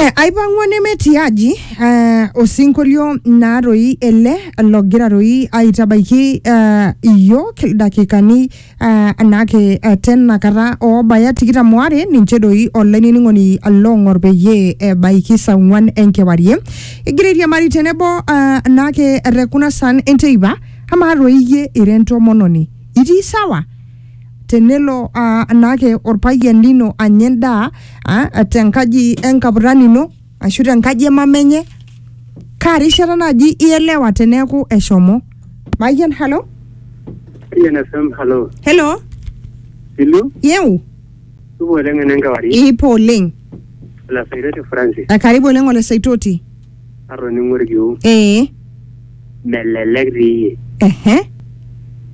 Eh, aipang'ua nemetii aji eh, osinkolio naa toi ele logira toi aitabaiki eh, iyiook ildakikani eh, naake eh, tena kata oobaya tikitam oare ninche doi olainining'oni loong'or peyie ebaiki saa ong'uan enkewarie egira airiamari tenebo eh, naake te kuna san enteipa amaa toi iyie ira entomononi itii sawa tenelo aa naake orpayian lino anya endaa aa tenkaji enkapurrani ino ashu tenkaji emama enye kaa rishata naaji ielewa teneeku eshomo mayian halo Ian FM, hello. helo Ilu, yeu tupo oleng ene enkewarie, ipo oleng olasairoti Francis. Eh, karibu oleng ole saitoti atoning'o ilkiu ee melelek dii iyie ehe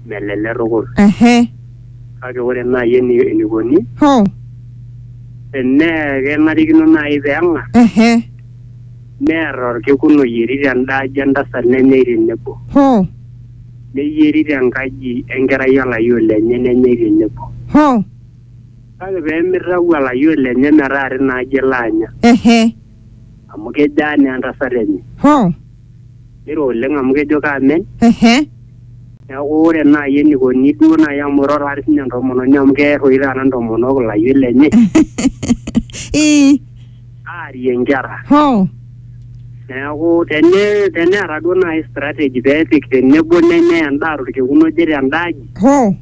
melelek tukul ehe kake ore naaji eni- enikoni ho tenaa kenarikino naaji peeng'ar ehe near orkekun oyieri tenda aji entasat nenyai tenebo ho neyieri tenkaji enkerai olayioni lenye nenyai tenebo ho kake peemitau olayioni lenye metaa tina aji elo anya ehe amu kejo aa naa entasat enye. Hoo. Niro oleng amu kejo kaamen. Ehe. Neeku ore naai enikoni duo naai amu iroro ati sinye entomononi amu keer oshi taata intomonok ilayiok lenye Ii. aarie inkera. Hoo. Neeku tene teneeta duo naai strategy peepik tenebo nenyai endaa torkekun oje tenda aji Hoo.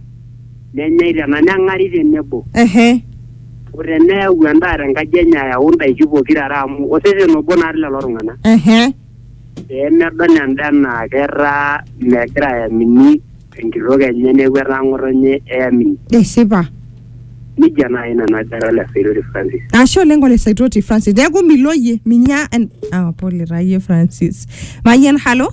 nenyai tena neng'ari tenebo ehe o teneyau endaa tenkaji enye ayau indaiki pokira are amu osesen obo naa lelo tung'anak ehe pee medol endaa enaa ketaa megira ayamini enkitok enye neeku etaa ng'otonye eyamini esipa nijia naaji nanu ajo ara ole Saitoti Francis ashe oleng ole saitoti francis neeku miloyie minya en- ah, pole taa yie francis mayian halo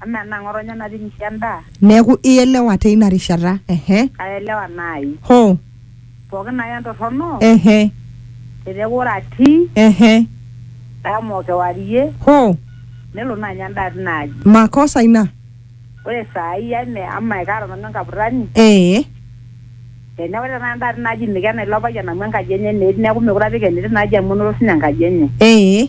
Amaa enaa ng'otonye nating'ishe endaa? Neaku ielewa teina rishata. Ehe. Kaelewa naai. Hoo. Pooki naai entorrono. Ehe. Teneaku ore atii. Ehe. Dama o kewarie. Hoo. Nelo naa anya endaa tina aji. Makosa ina. Ore saai eme ama ekaata nanu enkapurrani. Ee. Teneaku ore tenakata endaa tina aji mikena ilo payian amu enkaji enye naa etii neaku meekure apik endaa tina aji amu enoto siininye enkaji enye. Ee.